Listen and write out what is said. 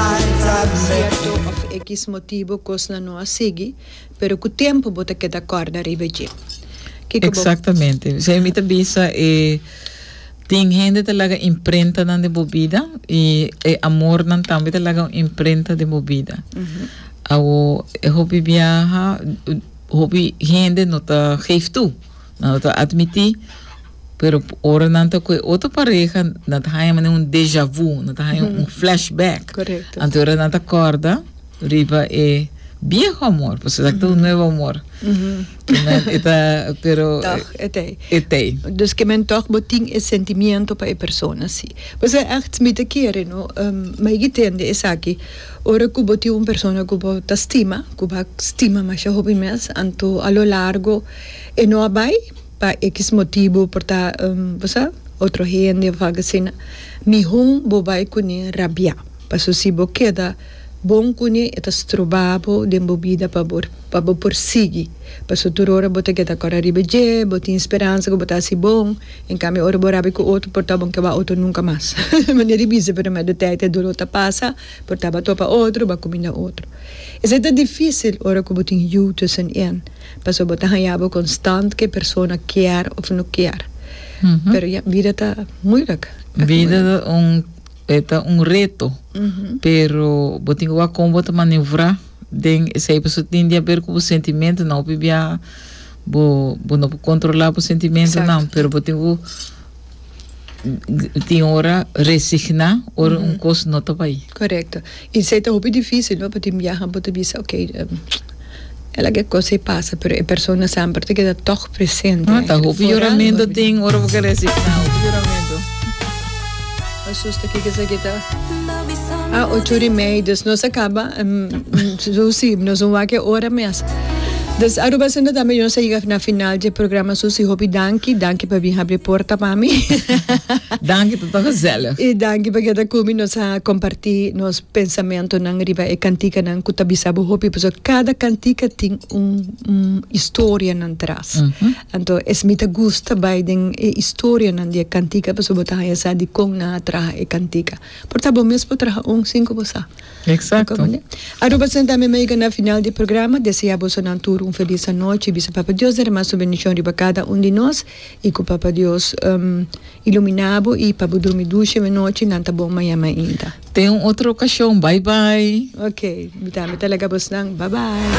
Por cierto of equis motibo cosnan no a sigui, pero cu tempo bo ta keda corda riba dje. Kico bo. Exactamente. P'esei mi ta bisa e tin hende ta laga imprentanan den bo bida y e amornan tambe ta laga un imprenta den bo bida. Awo e hopi biaha, hopi hende no ta geef toe. Nan lo ta admití, pero ora nan ta ku e otro pareha nan ta haña manera un déjà vu, nan ta haña un flashback. Correcto. Anto ora nan ta kòrda riba e bieho amor, pasobra esaki ta un nuevo amor. Ke men e ta, pero, Tòg e t'ei. e t'ei. Dus ke men tòg bo tin e sentimiento pa e persona si. Pasobra ègt mi ta kere, no, Maigi tende esaki, ora ku bo tin un persona ku bo ta stima, ku bo a stima masha hopi mes, anto a lo largo, E no a bai pa equis motibu por ta bo sa otro hende of algo asina mihon bo bai cune rabia paso si bo keda bon cune e ta stroba bo den bo bida pa bo pa bo por sigui paso tur ora bo ta keda cora riba dje bo tin speransa cu bo ta haci bon en cambio ora bo rabia cu otro por ta bon caba otro nunca mas manera di bisa pero me de tijd e dolor ta pasa por ta ba topa otro ba cuminda otro esey ta dificil ora cu bo tin yu tussen en. Pasobra bo ta haña bo konstant ku e persona kier òf no kier. Pero ya, bida ta muilik. Bida ta un, e ta un reto, pero bo tin ku wak kon bo ta maneuvrá den esei. Pasobra tin di aber ku bo sentimentonan hopi bia bo, bo no por kontrolá bo sentimentonan, pero bo tin ku. tin ora resigná ora un kos no ta bai. Korekto. I esei ta hopi difísil, no? Pasobra tin biaha bo ta bisa, oke, e laga e kos ei pasa, pero e persona semper ta keda tòg presente. Foral o. Hopi yuramentu tin ora bo ke resigná. Hopi yuramentu. Asusta kiko esaki ta a ocho ori mei dus nos a kaba susi nos un wak e ora mes dus Aruba Centro tambe nos a yiga na final dje programa susi hopi danki danki pa bin habri porta pa mi danki ta ta gezellig i danki pa keda kumi nos a komparti nos pensamentonan riba e kantikanan ku ta bisa bo hopi pasobra kada kantika tin un historianan tras Anto es mi ta gusta bai den e historianan di e cantica pasobra bo ta haya sa di con nan a traha e cantica. Por ta bo mes por traha un sin cu bo sa. Exacto. Aruba Santa Ami mi a yega na final di e programa. Desea boso nan tur un feliz anochi. Bisa Papa Dios derama su bendicion riba cada un di nos y cu Papa Dios ilumina bo y pa bo drumi dushi menochi. Nan ta bon maña mainta. Ten un otro ocasion. Bye bye. Ok, mi tambe ta laga bos nan. Bye bye.